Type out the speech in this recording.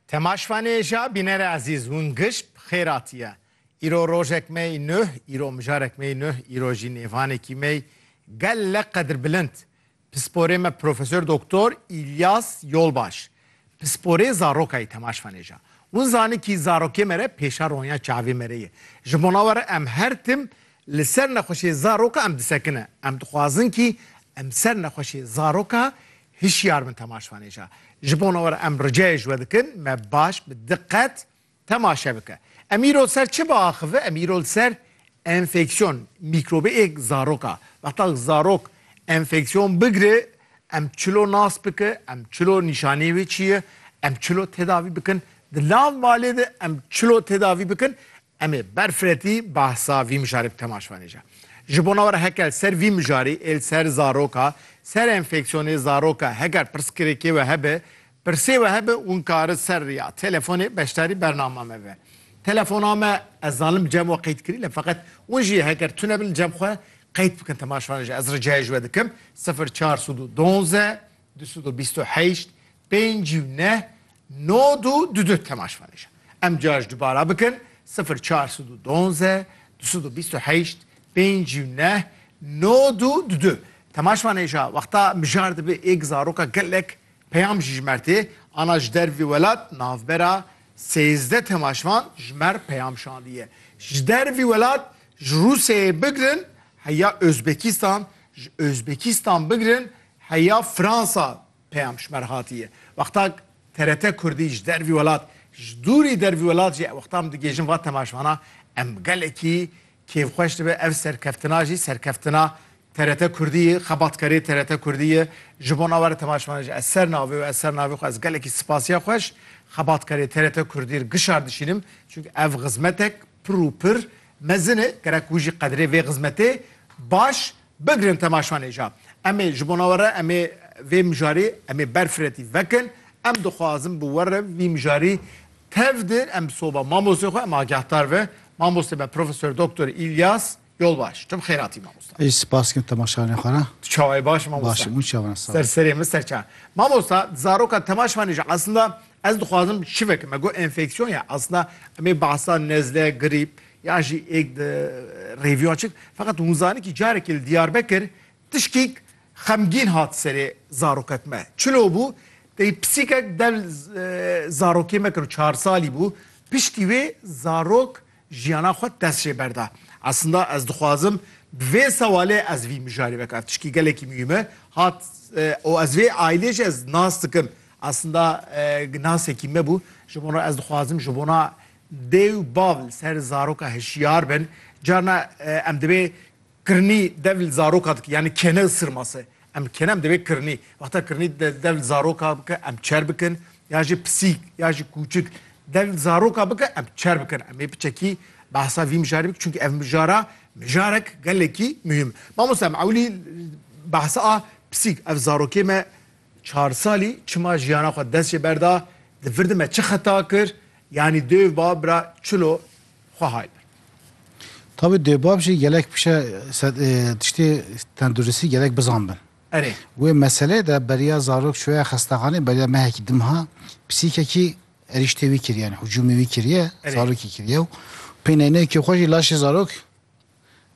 Temaşvanê ja bînere ezîz hûn gişp xêr atiye. Îro rojek me yê nuh, îro mijarek me yê nuh, îro jî nêvanekî me yê gele qedrbilind. Pisporê me Profesor Doktor Îlyas Yolbaş. Pisporê zarokayê temaşvanê ja. Hûn zani kî zarokê me re pêşa ronya çavê me re ye. Ji bona we re em her tim li ser nexweşê zaroka em disekine. Em dixwazin kî em ser nexweşê zaroka Hişyar bin temaşvanêja. Ji bona we re em ricayê ji we dikin me baş bi diqet temaşe bike. Em îro li ser çi biaxive? Em îro li ser enfeksiyon, mîkrobêk zarok a. Wexta zarok enfeksiyon bigire em çilo nas bike, em çilo nîşanî wê çi ye, em çilo tedavî bikin. Di nav malê de em çilo tedavî bikin. Em ê ber firetî behsa vî mijarê bi temaş venêje. Ji bona we re heke li ser vî mijarî ê li ser zaroka ser enfeksiyonê zaroka heger pirsgirêkê we hebe, pirsê we hebe hûn kari ser riya telefonê beşdarî bernama me be. Telefona me ez zanim li cem we qeyd kirî lê feqet hûn jî heger tune bin li cem xwe qeyd bikin temaş venêje ez ricayê ji we dikim sifir çar sed û duwazdeh du sed û bîst û heşt Pênc û neh, nod û du du temaş vane jî. Em cuya ji dubara bikin, sifir çar sed û duanze, du sed û bîst û heşt, pênc û neh, nod û du du temaş vane jî. Wexta mijar dibe êk zaroka gelek peyam jî jimertê. Ana ji dervî welat navbera sêzdeh temaş van ji mer peyam şandiye. Ji dervî welat ji Rûsyayê bigirin heya Ozbekîstan, ji Ozbekîstan bigirin heya Fransa Peyam ji ber hatî ye. Wexta TRT Kurdî ji dervî welat, ji dûrî dervî welat jî wexta min digihêjin va temaşvana em gelekî kêfxweş dibe. Ev serkeftina jî serkeftina TRT Kurdî ye, xebatkarê TRT Kurdî ye. Ji bo na were temaşvana jî ez ser navê û ez ser navê xwe ez gelekî spasiya xwe ji xebatkarê TRT Kurdî re gişar dişînim. Çimkî ev xizmetek pir û pir mezin e. Gerek wî jî qedrê vê xizmetê baş Bigirin temaşanê ja. Em ê ji bona we re em ê vê mijarê em ê berfiretî vekin. Em dixwazin bi we re vî mijarî tev di em bi soba mamostê xwe em agehdar ve. Mamostê me Profesor Doktor Îlyas Yolbaş. Tu bi xêratî mamosta. Ê spas kim temaşanê xwe re. Tu çawayî baş î mamosta? Baş im û çawan sağ ol. Ser serê min ser çawan. Mamosta di zaroka temaşanê jî eslinda ez dixwazim şive ke me got enfeksiyon ya eslinda em ê behsa nezle, grîp Yan jî êk di rêviya çik. Feqet hûn zanin kî carekê li Diyarbekir tişkîk xemgîn hat serê zarokek me. Çilo bû? Tey pisîkek del zarokê me kir û çar salî bû. Piştî wê zarok jiyana xwe dest jê berda. Eslinda ez dixwazim bi vê sewalê ez vî mijarê veke. Ev tişkî gelekî muhîm e. Hat û ez vê aîlê jî ez nas dikim. Eslinda nasekî me bû. Ji bo re ez dixwazim ji bona Dê û bav li ser zaroka hişyar bin. Carna em divê kirnî dev li zaroka dike yanî kene û sirmase. Em kene em divê kirnî. Wexta kirnî dev li zaroka bike em çer bikin ya jî pisîk ya jî kûçik dev li zaroka bike em çer bikin. Em ê bi çekî behsa vî mijarê bikin çunkî ev mijara mijarek gelekî muhîm. Mamoste em ewilî behsa a pisîk ev zarokê me Çar salî çima jiyana xwe dest jê berda, di vir de me çi xeta kir, yanî dêv bab bira çilo xwe hay bin. Tabî dêv bab jî gelek pişe tiştê tenduristî gelek bizan bin. Erê. Wê meseleyê de beriya zarok çûye xestaxanê beriya mehekî dimha psîkekî erîştê wî kiriye yani hücumê wî kiriye zarokî kiriye û pêneyneyekê xwe jî laşê zarok